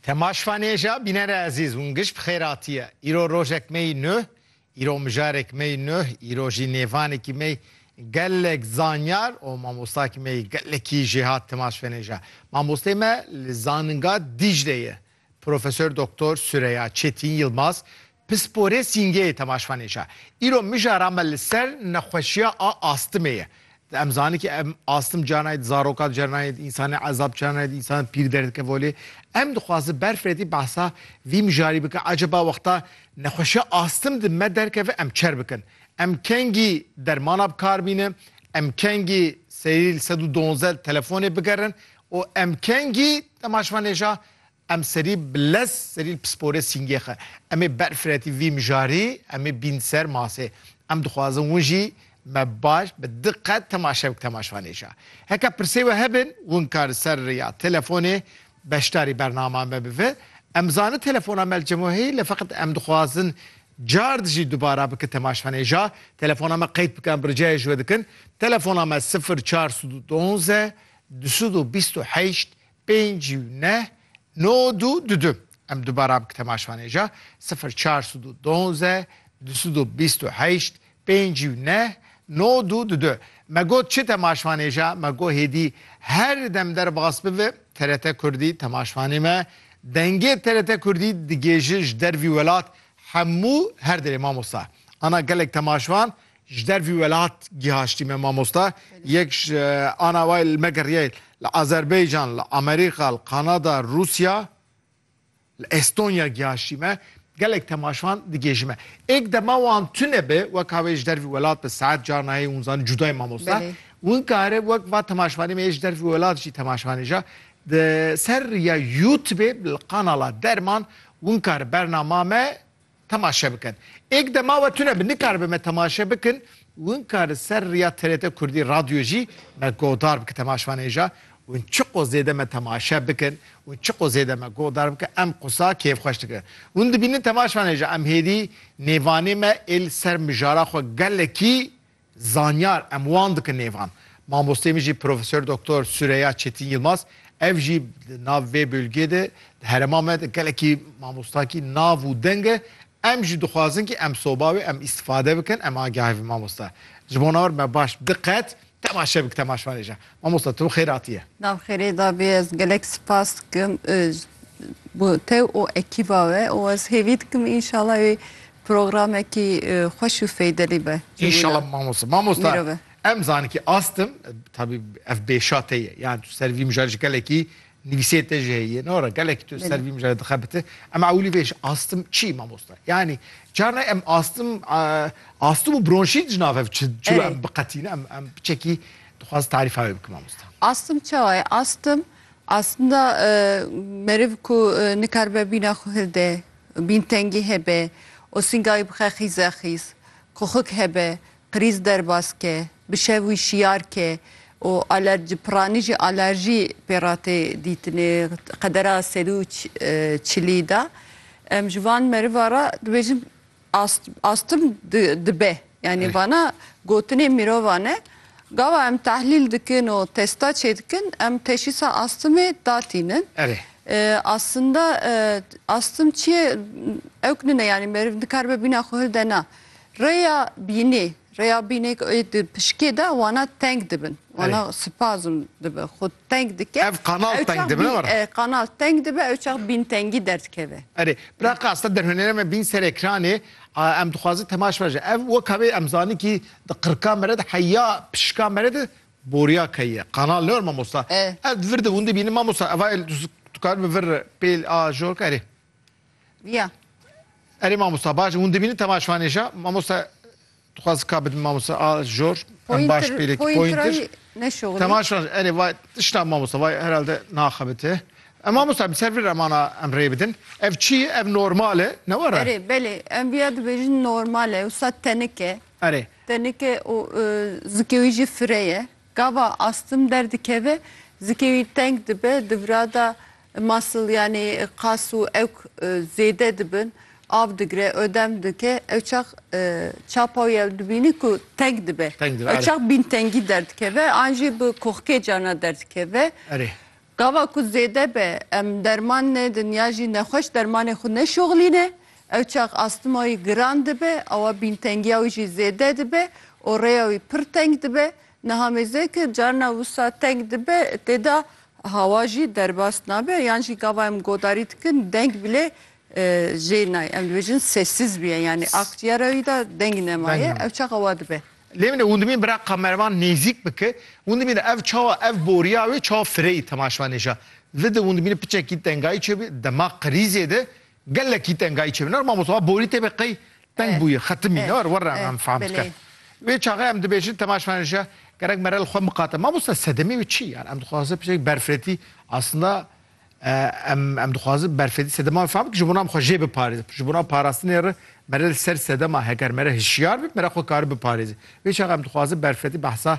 Temaşvanêja bînere ezîz hûn giş bi xêr hatiye. Îro rojek me yî nuh, îro mijarek me yî nuh, îro jî nêvanekî me yî gelek zanyar û mamostakî me yî gelekî jê hat temaşvanêja. Mamostê me li zaninga Dîcle ye Profesor Doktor Sureya Çetîn Yilmaz Pisporê Sîngeyê temaşvanê şa. Îro mijara me li ser nexweşiya a astimê ye. Em zanî ki em astim ca nayê di zarokan ca nayê di însanê ezab ca nayê di însan pîr derdikeve holê. Em dixwazin berfiredi behsa vî mijarî bikin aceba wexta nexweşiya astim di me derkeve em çer bikin. Em kengî dermana bi kar bînin, em kengî serî li sed û donzdeh telefonê bigerin û em kengî temaşvanê şa Em serî bi lez serî li pisporê sîngê xwe. Em ê berfiretî vî mijarî, em ê bîn ser masê. Em dixwazin win jî me baş bi di qet temaşe bik temaşvanê jî. Heke pirsê we hebin, win ka li ser rêya telefonê beşdarî bernama me bive. Em zanin telefona me li cem we heye lê feqet em dixwazin card jî dubara bikin temaşvanê jî. Telefona me qeyd bike em bi ricayê ji we dikin. Telefona me sifir çar sed û duonze du sed û bîst û heşt Pênc û neh, nod û du du. Em dubara bik temaşanê ja, sifir çar sud û donze, du sud û bîst û heşt, pênc û neh, nod û du du. Me got çi temaşanê ja, me got hêdî her dem derbas bibe TRT Kurdî temaşanê me. Dengê TRT Kurdî digêje ji dervî welat hemû her derê mamosta. Ana gelek temaşan Ji dervî welat gihaştî me mamosta, yek ji ana wê li me geriyayê li Azerbeycan, li Amerîka, li Kanada, Rûsya, li Estonya gihaştî me. Gelek temaşvan digêjî me. Êk dema wan tune be, weka wê ji dervî welat be, saet carna heye hûn zanîn cuda ye mamosta. Hûn kare wek va temaşvanê me yê ji dervî welat jî temaşvanê ja. Di ser rêya Youtubê li kanala Derman hûn kare bernama me Temaşe bikin. Êk dema we tune bi nikaribe me temaşe bikin win ka li ser riya TRT Kurdî radyo jî me godar bike temaşvanê ja win çiqo zêde me temaşe bikin win çiqo zêde me godar bike em qusa kêfxweş dikirin. Win dibînin temaşvanê ja em hêdî nêvanê me ê li ser mijara xwe gelekî Zanyar em wan dikin nêvan. Mamosteyê min jî Profesor Doktor Sureya Çetin Yilmaz ev jî di nav vê bölgê de di herema me de gelekî mamostakî nav û deng e. Em jî dixwazin kî em soba wê em îstifade bikin em agahê vê mamosta ji bo nawir me baş bi diqet temaşe bik temaşvanê jî. Mamosta tu bi xêr hatiye. Nav xêrê da bî ez gelek sipas dikim bo tew û ekîba we û ez hêvî dikim înşala wê Programekî xweş û feydelî be. Înşala mamosta. Mamosta em zanin ki astim tabî ev bêşa te ye. Yani tu ser vî mijarê ji gelekî nivîsê te jî heye. Ne were gelekî tu ser vî mijarê dixebite. Em ewilî vê ji astim çi mamosta? Yani carna em astim astim û bronşît ji nav hev çi çi em biqetîne em em çekî dixwaz tarîfa wê bikim mamosta. Astim çawa ye? Astim aslında meriv ku nikaribe bîna xwe hilde Bîn tengî hebe, osîngayî bixe xîzexîz, koxik hebe, qirîz derbas ke, bi şev wî şiyar ke û aler ji piranî jî alerjî pê re tê dîtin ê qedera sed û çilî de. Em ji van meriva re dibêjin astm dibe. Yanî vana gotinên mirovan e. Gava em tehlîl dikin û testa çêdikin em teşîsa astimê datînin. Erê. Aslında astim çi ye ewk nine yanî meriv nikaribe bîna xwe hilde na. Rêya bînê, rêya bînê di pişikê de wana teng dibin. Wana spazm dibe xwe teng dike. Ev kanal teng dibe ne were? Kanal teng dibe ew çax bîntengî derdikeve. Erê. Bira qasta derhunêre me bîn ser ekranê. Em dixwazin temaş ve ji ev weka wê em zanîn kî di qirka me re de heya pişika me re de boriya key ye. Kanal ne mamosta. Ev di vir de windi bînin mamosta eva el tu kar bi vir pêl a jor ka erê. Ya. Erê mamosta baş windi bînin temaş vanêja mamosta Dixwaz ka bidin mamoste a jor em baş pêlek pointir temaşa erê vay tişta mamoste vay herhalde naxebite. Em mamoste em ser vir emana em rê bidin. Ev çi ye ev normal e ne were? Erê belê em viya dibêjin normal e wisa tenik e. Erê. Tenik e û zikê wî jî firê ye. Gava astim derdikeve zikê wî teng dibe di virada Muscle yanî qas û ewk zêde dibin, av digire, odem dike, ew çax çapa wî ew dibînî ku teng dibe. Teng dibe, are. Ew çax bîntengî derdikeve an jî bi koxkê carna derdikeve. Erê. Gava ku zêde be em derman nedin ya jî nexweş dermanê xwe neşoxilîne, ew çax astima wî giran dibe, awa bîntengiya wî jî zêde dibe û rêya wî pir teng dibe. Niha mêzê ke carna wisa teng dibe tê de hawa jî derbas nabe yan jî gava em godarî dikin deng bilê jê nayê. Em dibêjin sessiz bûye yanî akcîyera wî de deng nemaye ew çaxa wa dibe. Lê min hûn dimîn bira kamerman nêzîk bike hûn dimîn ev çawa ev boriya wê çawa fireyî temaşvanêja vidi hûn dimîn piçekî tengayî çêbûye dema qirîzê de Gelekî tengayî çêbû ner mamosta borî tê be qey teng bûye xetimî ner werre em em fam dike. Wê çaxê em dibêjin temaş me nişe gerek mere li xwe miqate. Mamosta sedemê wê çi yan em dixwaze pişek berfetî aslında em em dixwazin berfetî sedema wê fam dik ji bonan xwe jê biparêz ji bonan parastinê re mere li ser sedema heger mere hişyar bib mere xwe kari biparêzê. Wê çax em dixwazin berfetî behsa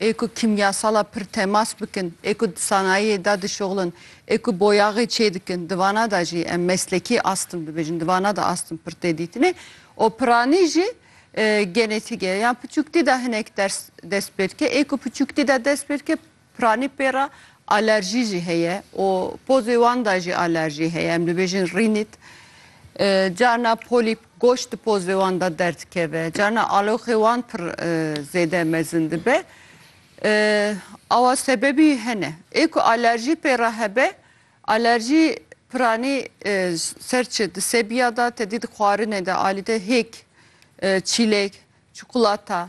ê ku kîmyasala pir temas bikin, ê ku di sanayiyê de dişuxlin, ê ku boyaxê çêdikin, di vana de jî em meslekî astm dibêjin, di vana de astm pir tê dîtinê û piranî jî genetîk e. Yan piçûktî de hinek ders dest pê dike, ê ku piçûktî de dest pê dike piranî pê re Alerjî jî heye û pozê wan de jî alerjî heye. Em dibêjin rînît. Carna polîp, goş di pozê wan de derdikeve. Carna aloxê wan pir zêde mezin dibe. Awa sebebî hene. Ê ku alerjî pê re hebe, alerjî piranî ser çi? Di sebiya de, tedî di xwarinê de alî de hêk, çîlek, çikolata,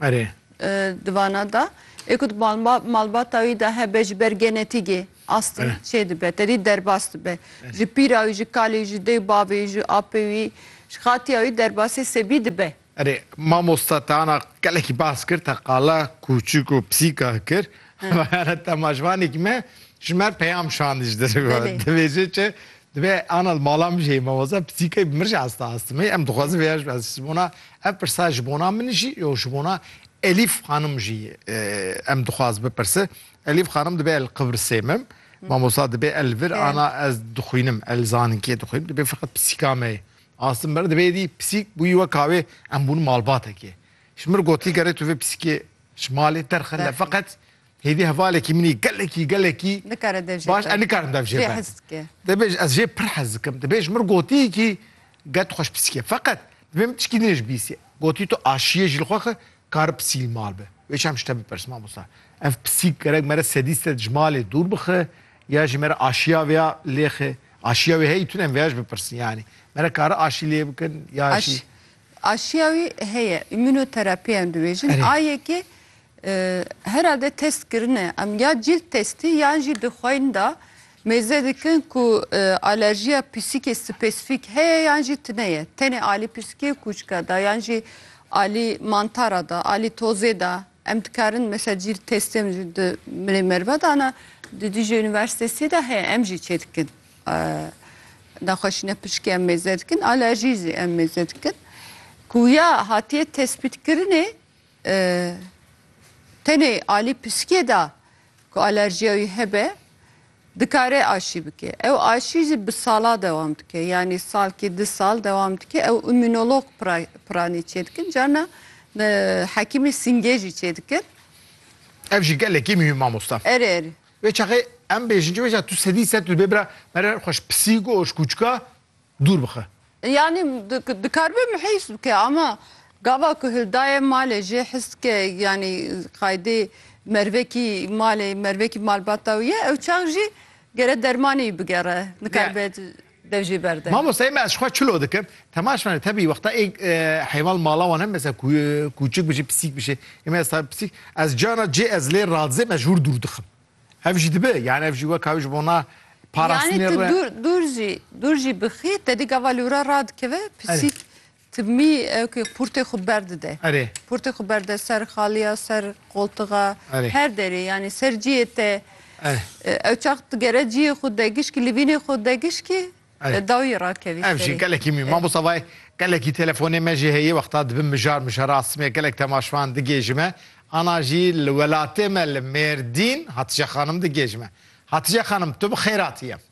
Erê. Di vana de ê ku di malbata wî de hebe ji ber genetîgê astî çêdibe, tedî derbas dibe. Ji pîra wî, ji kalê wî, ji dê û bavê wî, ji apê wî, ji xatiya wî derbasî sebî dibe. Erê, mamosta te ana gelekî bas kir, te qala kûçik û pisîka kir. Te ma ji vanekî me ji me peyam şandî ji derve. Divêjê çi Divê ana li mala min jî mamosta psîkê bi min jî asta astimê. Em dixwazin vêya jî ez ji bona ev pirsa ji bona min jî yo ji bona Elîf xanim jî em dixwaz bipirse. Elîf xanim divê el Qibrisê mim. Mamosta divê el vir ana ez dixwînim el zaninkiyê dixwînim divê feqet psîka me astim ber divê dî psîk bûyî weka wê em bûn malbatekê. Ji min gotiye gerê tu vê psîkê ji malê derxin de feqet Hêdî hevalekî min î gelekî gelekî Nikare dev jê baş e, nikarim dev jê Jê ben. hez dike. Dibê ji- ez jê pir hez dikim. Dibê ji min gotiyê kî get xweş pisîke. Feqet dibê min tişkî din ji bîsê. Gotî tu aşiyê jî li xwe xi kar pisîl mal bi. Wê çem ji te bipirs mamosta. Ev pisîk gerek me re sedî sed ji malê dûr bixi ya jî me re aşiya vêya lêxi. Aşiya wê heyî tune em vêya jî bipirsin yanî. Me re kari aşî lê bikin ya jî. Aş- Aşiya wî heye îmûnoterapiyan dibêjin Erê. a yekê e, herhalde test kirine em ya cîld testî yan jî di xweyîn de mêze dikin ku e, alerjiya pîsikê spesîfîk heye yan jî tune ye. Tenê alî pîsikê kûçika de yan jî alî mantara de, alî tozê de em dikarin mesela cîld testê em jî di milê merve de ana di Dîcle Unîversîtesî de heye em jî çêdikin. Nexweşîne pişkê em mêze dikin, alerjî zî em mêze dikin. Ku ya hatiye tespîtkirinê e, tenê alî piskê da ku alerjiya wî hebe dikare aşî bike. Ew aşî zî bi sala dewam dike. Yanî salkî di sal dewam dike. Ew îmûnolog pira- piranî çêdikin. Carna e, hekîmê singê jî çêdikin. Ev jî gelekî muhîm mamosta. Erê erê. Vê çaxê em bêjin çi bêjin tu sedî sed tu dibê bira mere xweş pisîk û oşkûçika dûr bixe. Yanî dikaribe mihîs bike ama gava ku hildaye malê jê his dike yanî qaydê mervekî malê mervekî malbata wî ye ew çax jî gere dermanî bigere nikaribe. Dev jî berde. Mamoste me ez xwe çilo dikim. Temaş me tebî wexta ê heyvan mala wan hem mesela kûçik bijî pisîk bijî. Ê me ez ta pisîk ez cana cê ez lê radizê me ji hûr dûr dixim. Ev jî dibe yani ev jî wek hawi ji bona parastinê re. Yani tu dûr dûr jî dûr jî bixî te dî gava lûra radikeve pisîk Tibmî ewkî qûrtê xwe berdide. Erê. Qûrtê xwe berde ser xaliya, ser qoltixa, Erê. her derê yanî ser ciyê te. Erê. Ew çax digere ciyê xwe de gişkî li vînê xwe de gişkî Erê. dawî rakevî Ev jî serê. gelekî mî. Mamosta vay gelekî telefonê me jî heye wexta dibin mijar mijar a simê gelek temaşvan digêji me. Ana jî li welatê me li Mêrdîn Hatice Xanim digêji me. Hatice Xanim tu bi xêratî yem.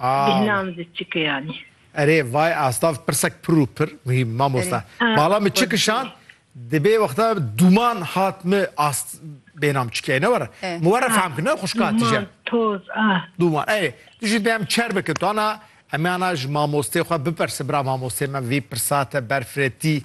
Bêhna min zî çi kiyanî. Erê vay astav pirsek pir û pir muhîm mamosta. Bala min çi kişand dibê wexta dûman hat mi ast bêhna min çi kiyanî ne were. Min were fehm kir ne xuşka tije. Toz a. Dûman erê tu jî dê em çer bikin tu ana. Em ana ji mamostê xwe biperse bira mamostê me vî pirsa te berfirê tî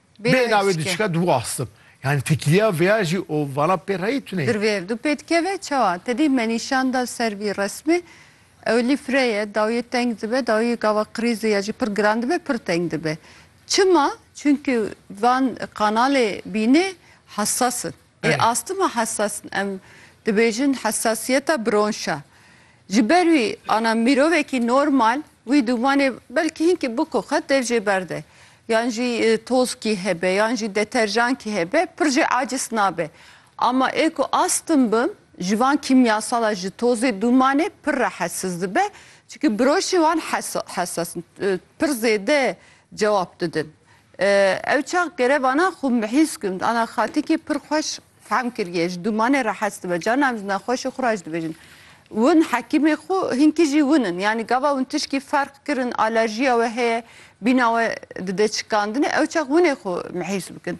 Bê na wê diçike dû astim. Yani tekiliya veya jî û vana pê reyî tune. Dirvê du pê dikeve çawa? Te dî me nîşan da ser vî resmê. Ew lî fire ye, dawiyê teng dibe, dawiyê gava qirîzi ya jî pir giran dibe, pir teng dibe. Çima? Çunkî van kanalê bînê hesas in. Ê astima hesas em dibêjin hesasiyeta bronş e. Ji ber wî ana mirovekî normal wî dûmanê belkî hinkî biko qet dev jê berde. Yan jî tozkî hebe yan jî deterjankî hebe pir jê acis nabe. Ama ê ku astim bim ji van kîmyasala ji tozê dûmanê pir rehesiz dibe. Çimkî biroşên wan hesas in. Pir zêde cewab didin. Ew çax gerevana xwe mihîs gund ana xatikî pir xweş fehm kiriye, ji dûmanê re hez dibe, carna em ji nexweşê xwe re jî dibêjin Win hekîmê xwe hinkî jî win in. Yanî gava win tişkî ferq kirin, alerjiya we heye, bîna we dide çikandinê, ew çax winê xwe mihîs bikin.